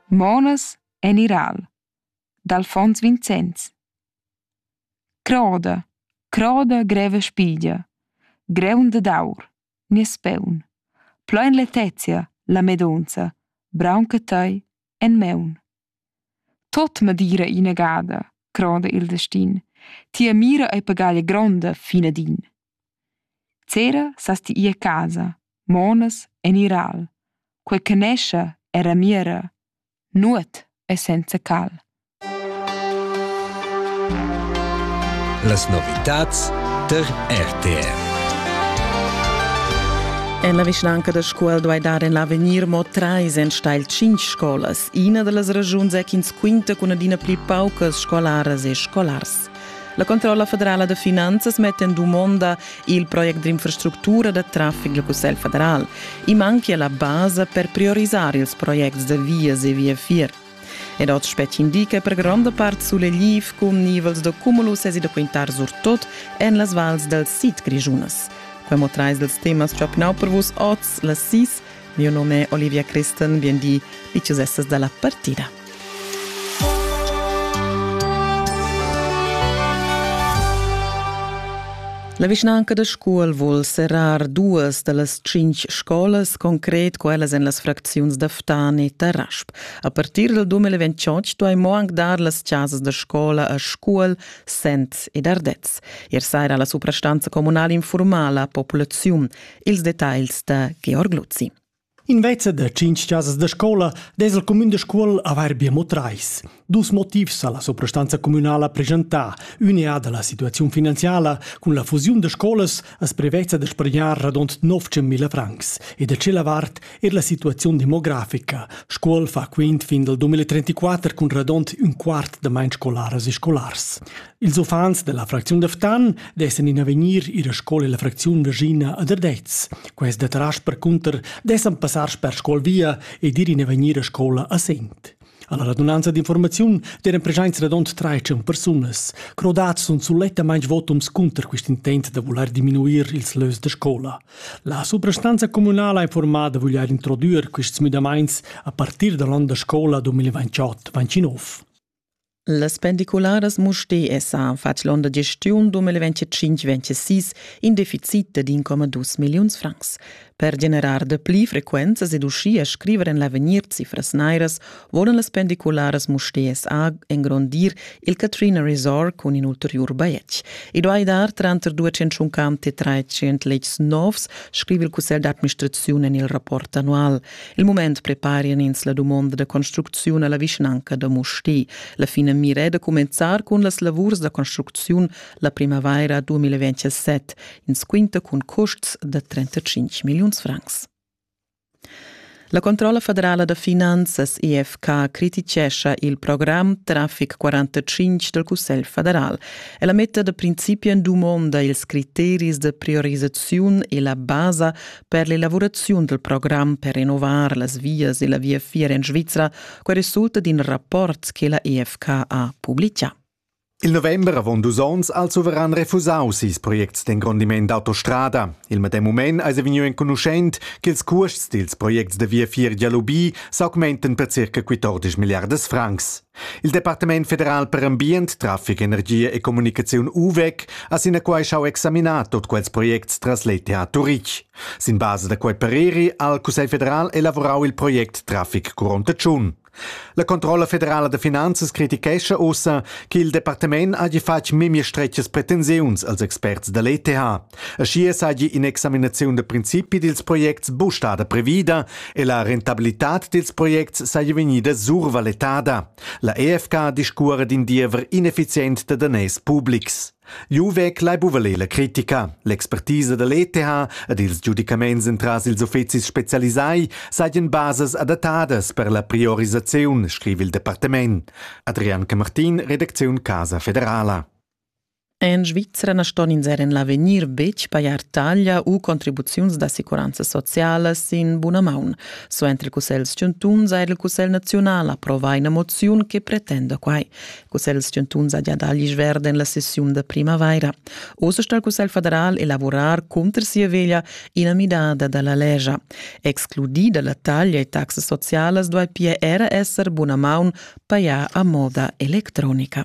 Monas en iral d'Alfons Vinzens Croda, croda greva spiglia, greun dad aur, nies peun, plein letezia, la medonza, braunca tei en meun. Tot me dira inagada, croda il destin, tia mira ei pagaglia gronda, fina din. Zera sas ti ir a casa, monas en ir al, quei che nescha era mira, nuot è senza cal. Las novitads tar RTR. En la vischnanca da Scuol duai dar en l'avegnir mo trais enstagl cinc scolas. Ina da las ragiuns è ch'ins quinta cun adina pli paucas scolaras e scolars. La Controlla federala da finanzas metta en dumonda il project d'infrastructura da traffic del Cussegl federal. I manchia la basa per priorisare ils projects de vias e viafier. Ed oz spetg indica per gronda part sulegliv cun nivels de cumulus e da quintar surtot en las vals del sid grigiunas. Quemo trais dels temas ciopnau per vus oz, la sis. Mio nome è Olivia Christen, bien di, dicius essas dalla partida. La vischnanca da Scuol vul serrar duas da las tschintg scolas, concret quellas en las fracziuns da Ftan e Tarasp. A partir del 2028 duai mo anc dar las chasas da scola a Scuol, Sent ed Ardez. Ier saira la suprastanza communal informala la populaziun. Ils detagls da Georg Luzzi. Invezza da tschintg chasas da scola dess il cumün da Scuol avair be mo trais. Dus motivs ha la suprastanza communala preschentà. Ün è da la situaziun finanziala. Cun la fusiun da scolas as prevezza da spargnar radund 900.000 francs e da tschella vart er la situaziun demografica. Scuol fa quint fin dal 2034 cun radund ün quart da main scolaras e scolars. Ils uffants della fracziun da Ftan dessen in avegnir ir a scola la fracziun Virginia a Derdez. Quest tras percunter dessen passar sper scol via ed ir in avegnir a scola a Sent. Alla radunanza d'informaziun deren presenza radont 13 persunas. Crodats sun sulettamain votums cunter quest intent da voler diminuir ils lös de scola. La suprastanza communala ha informato da voler introdüer quests müdamaints a partir dall'on da scola 2028-29. Las pendicularas Mustér sa fatg l'onn da gestiun 2025-26 in deficit de 1,2 milliuns francs. Per generar de pli frequenzas ed uschia scriver en l'avegnir cifras nairas volan las pendicularas Mustér SA engrondir il Katrina Resort cun in ulteriur bajetg. I duai dar tranter 250 e 300 letgs novs, scrive il cussegl d'administrazione en il rapport annual. Il mument preparian ins la dumonda da construcziun alla vischnanca da Musti. La finamira è da cumenzar cun las lavurs da construcziun la primavaira 2027, ins quinta cun custs da 35 milliuns francs. La controlla federala da finanzas EFK criticescha il program Traffic 45 del Cussegl federal. Ella metta da principi en dumonda ils criteris de priorisaziun e la basa per l'elavuraziun dal program per innovar las vias e la viafier en Svizra, quai resulta d'in rapport che la EFK ha publicà. Il november avon dus onns also verran refusaus ils projects d'engrondiment d'autostrada. Il medem mument eis vegniu enconuschent ch'ils cuosts dils projects da viafier Dialubi s'augmenten per circa 14 milliardas francs. Il Departament federal per ambient, traffic, energia e communicaziun UVEC ha sinaquai schau examinar tot quels projects tras l'ETH Turitg. Sin base da quei pareri ha il Cussegl federal elavorau il project Traffic Curonta Tschun. La Controlla federala da finanzas critichescha ussa che il departament hagi fatg memia stretgas pretensiuns als experts da l'ETH. Aschia seigi in'examinaziun da principi dils projects buc stada previda e la rentabilitad dils projects seigi vegnida survaletada. La EFK discuora d'in diever ineffizient da daners publics. Juvec lai buvaler la critica. L'expertisa dall'ETH ed ils giudicaments entras ils uffecis specialisai seigien basas adattadas per la priorisaziun, scrivi il departament. Adrian Camartin, redacziun Casa Federala. En Svizra na ston ins er en l'avegnir betg pajar taglia u contribuziuns d'assicuranza sociala sin buna maun. Suenter il Cussegl chantuns ha il Cussegl naziunal approvà ina moziun che pretenda quai. Il Cussegl chantuns ha già dà gli verde en la sessiun da primavaira. Oz sta il Cussegl federal elaborar cunter sia veglia ina midada da la legia. Excludida la taglia e taxas socialas duai pia era esser buna maun pajar a moda electronica.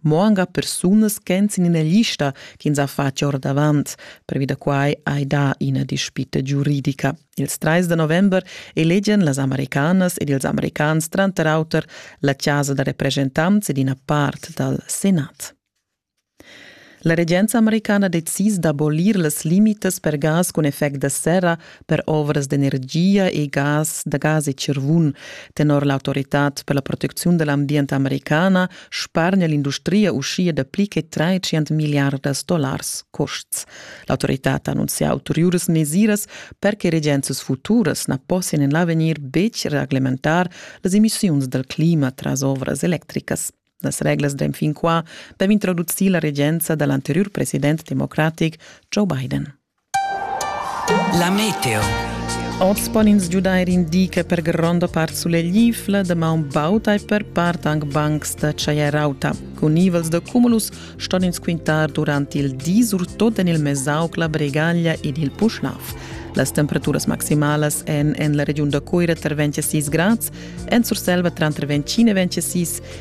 mo anca persunas ch'èn sin ina lista ch'ins ha fatg ordavant. Previ da quai hai dà ina dispita giuridica. Ils trais da november elegian las americanas ed ils americans tranter auter la chasa da representants ed ina part dal Senat. La regenza americana decisa d'abolir las limitas per gas cun effect da serra per ovras d'energia e gas da gas e tschirvun. Tenor l'autoritad per la protecziun da l'ambient americana spargna l'industria uschia da pli che 300 miliardas dollars custs. L'autoritad ha annunzià ulteriuras mesiras per che regenzas futuras na possian en l'avegnir betg reglementar las emissiuns dal clima tras ovras electricas. Las reglas da fin qua dev introducir la regenza da l'anteriur president democratic Joe Biden. La meteo. Oz pon ins giudair indica per gronda part suleglifla, damaun bauta e per part anc bancs da chaierauta. Cun nivels da cumulus ston ins quintar durant il di, surtut en il Mesauc, la Bregaglia ed il Puschlav. Las temperaturas maximalas èn en la regiun da Cuira tranter 26 grads, en Surselva tranter 25 e 26